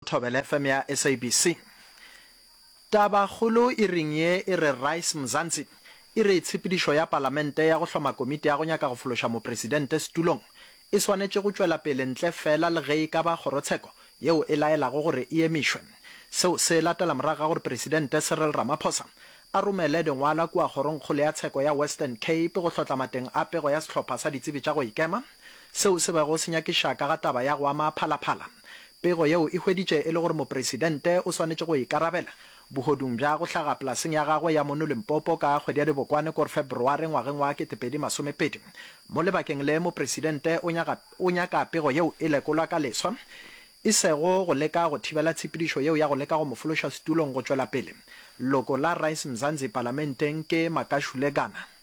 Thobela FM ya SABC. Taba kgolo iring ye e re Rise Mzansi e re tshepedišo ya Palamente ya go hloma komiti ya go nyaka go fološa Mopresidente setulong e swanetše go tšwela pele ntle feela le ge e ka ba kgorotsheko yeo e laelago gore e emišwe. Seo se latela morago ga gore Presidente Cyril Ramaphosa a romele lengwala kua Kgorongkgolo ya Tsheko ya Western Cape go hlotla mateng a pego ya sehlopha sa ditsebi tša go ikema seo se bego se nyakiša ka ga taba ya go ama Phala Phala. Pego yeo e hweditše e le gore Mopresidente o swanetše go ikarabela bohodung bja go hlaga polaseng ya gagwe ya mono Limpopo ka kgwedi ya Dibokwane kor February ngwageng wa ketepedi masomepedi. Mo lebakeng le, Mopresidente o nyaka, o nyaka pego yeo e lekolwa ka leswa, e sego go leka go thibela tshepedišo yeo ya go leka go mo fološa setulong go tšwela pele. Loko la Rise Mzanzi palamenteng ke Makashule Gana.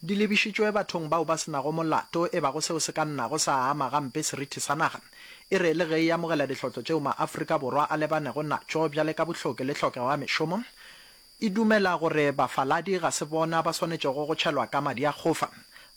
di lebišitšwe bathong bao ba se nago molato, e bago seo se ka nnago sa ama gampe serithi sa naga, e re le ge e amogela dihlotlo tšeo maAfrika Borwa a lebanego natšo bjale ka bohloki le tlhokego ya mešomo, e dumela gore bafaladi ga se bona ba swanetšego go tšhelwa ka madi a kgofa.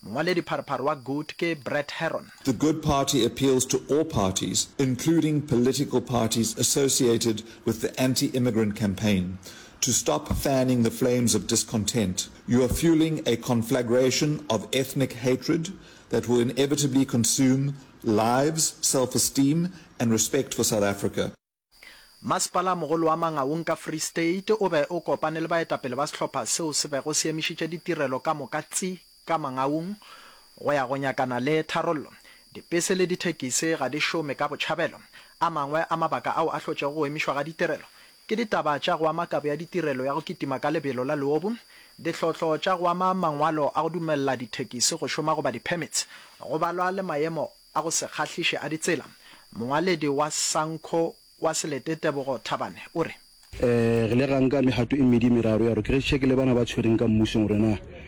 Mongwaledipharopharo wa Good ke Brett Herron. The Good Party appeals to all parties, including political parties associated with the anti-immigrant campaign, to stop fanning the flames of discontent, You are fueling a conflagration of ethnic hatred that will inevitably consume lives, self-esteem and respect for South Africa. Masepala-mogolo wa Mangaung ka Free State o be o kopane le baetapele ba sehlopha seo se bego se emišitše ditirelo ka moka tsi ka Mangaung go ya go nyakana le tharollo. Dipese le dithekisi ga di šome ka botšhabelo. A mangwe a mabaka ao a hlotšego go emišwa ga ditirelo Ke ditaba tša go ama kabo ya ditirelo ya go kitima ka lebelo la leobu, dihlotlo tša go ama mangwalo a go dumelela dithekisi go šoma goba di-permits, go balwa le maemo a go se kgahliše a ditsela. Mongwaledi wa Sanco wa Selete Tebogo Thabane o re. Re ile ra nka megato e mmedi-meraro ya gore ke re tšhekele bana ba tshwereng ka mmusong gore na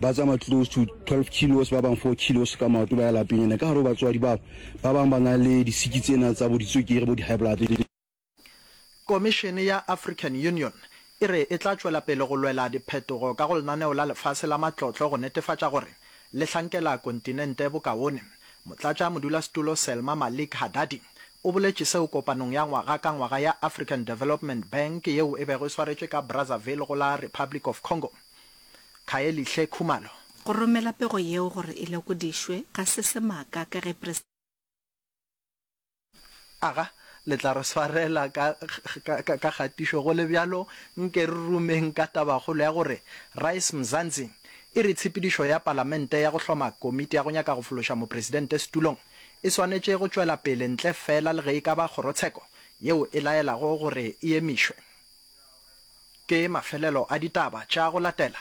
Ba tsamaya close to 12 kilos, ba bang 4 kilos ka maoto ba ya lapeng. Ene ka gare go batswadi bao, ba bang ba na le disiki tsena tsa bo ditswekere, bo di-high blood. Komišene ya African Union e re e tla tšwela pele go lwela diphetogo ka go Lenaneo la Lefase la Matlotlo go netefatša gore le hlankela kontinente bokaone. Motlatša modulasetulo Selma Malik Haddadi o boletše seo kopanong ya ngwaga ka ngwaga ya African Development Bank yeo e bego e swaretšwe ka Brazzaville go la Republic of Congo. Khaelihle Khumalo. Go romela pego yeo gore e lekodišwe ga se semaka ka ge Presidente. Aga, le tla re swarela ka kgatišo. Go le bjalo, nke re rumeng ka tabakgolo ya gore Rise Mzansi e re tshepedišo ya Palamente ya go hloma komiti ya go nyaka go fološa Mopresidente setulong e swanetše go tšwela pele ntle feela le ge e ka ba kgorotsheko yeo e laelago gore e emišwe. Ke mafelelo a ditaba tša go latela,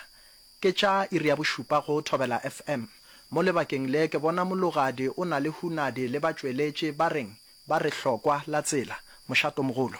ke tša iri ya bošupa go Thobela FM. Mo lebakeng le ke bona mologadi o na le hunadi le batšweletši ba reng ba re hlokwa la tsela, mošatomogolo.